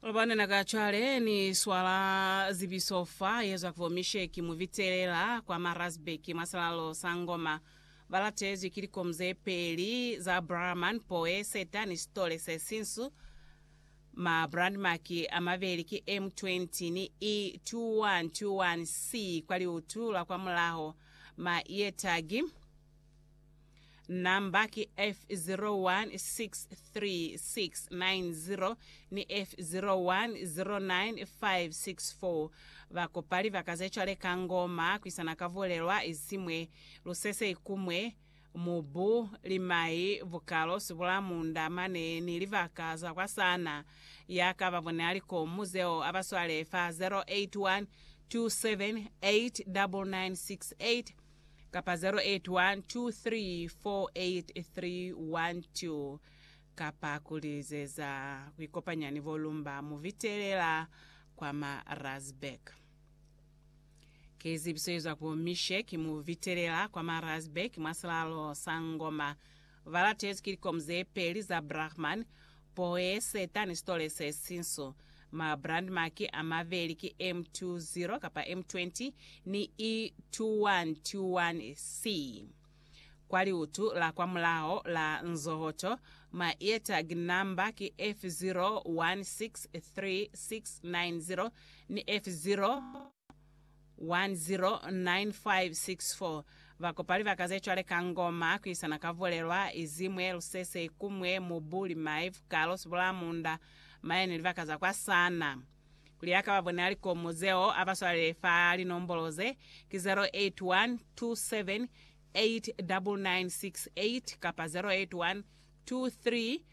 Lubana na ka cwale ni swala zibiso fa ye zwa kwa Misheki mu bitelela kwa Marazbek mwa salalo sa Ngoma. Ba latezwi ki likomu ze peli za Brahman, Poe, Seta ni Sitole se Sinsu. Ma brandmark a mabeli ki M20 ni E2121C kwa liutu la kwa mulaho. Ma ear tag. Namba ki F016360 ni F010956 Ba kopali ba ka ze cwale ka ngoma kwisana ka vulelwa isimwe, lusese ikumwe, mubu, limai, bukalo, sibulamunda, mane, ni libaka za kwa sana. Ya ka ba bone alikomu zeo aba swale fa 0812789968. kapa 0812348312 kapa ku lizeza ku ikopanya ni bo Lumba Muvitelela kwa Marazburg. Ki zibiso ye zwa ku Mishe ki Muvitelela kwa Marazburg mwa silalo sa Ngoma Ba latezi ki likomu ze peli za Brahman, Poeseta ni Sitole se Sinsu. Ma brandmaki a mabeli ki M20 kapa M20 ni E2121C. Kwa liutu la kwa mulaho la nzohoto, ma-eartag namba ki F016369 ni F0. 109564 Ba kopa libaka ze cwale ka Ngoma ku isana ka Vulelwa, Izimwe, Lusese, Ikumwe, Mubu, Limai, Vukalo, Sibulamunda, Maye ni libaka za kwa Sana. Kuli a ka ba bonela likomo zeo, a ba swalele fa linombolo ze, ki 0812789968 kapa 0812345648.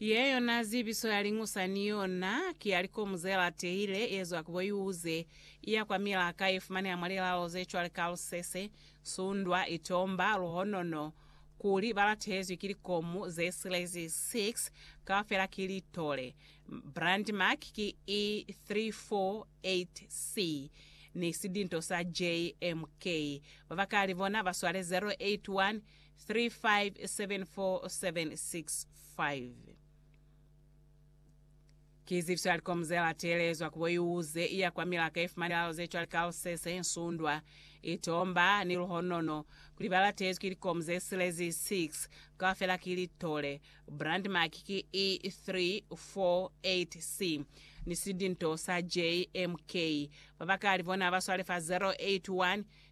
Ye yona zibiso ya liñusa ni yona ki ya likomu ze latehile ye zwa ku boyuze, iya kwa milaka ye fumaneha mwa lilalo ze cwale ka lusese, sundwa, itomba, luhonono, kuli ba latehezwi ki likomu ze silezi 6, kaufela ki litole. Brandmark ki E348C ni sidinto sa JMK. Babakali bona ba swale 081. 357465. Ki zifi za likomu ze la teelezwa ku bo iuze i ya kwa milaka ye fumani lilalo ze cwale ka lusese, nsundwa, itomba, ni luhonono, kuli ba latezwi ki likomu ze silezi 6 kaufela ki litole, brand mark ki E348C, ni sidinto sa JMK? Babakali bona ba swale fa 081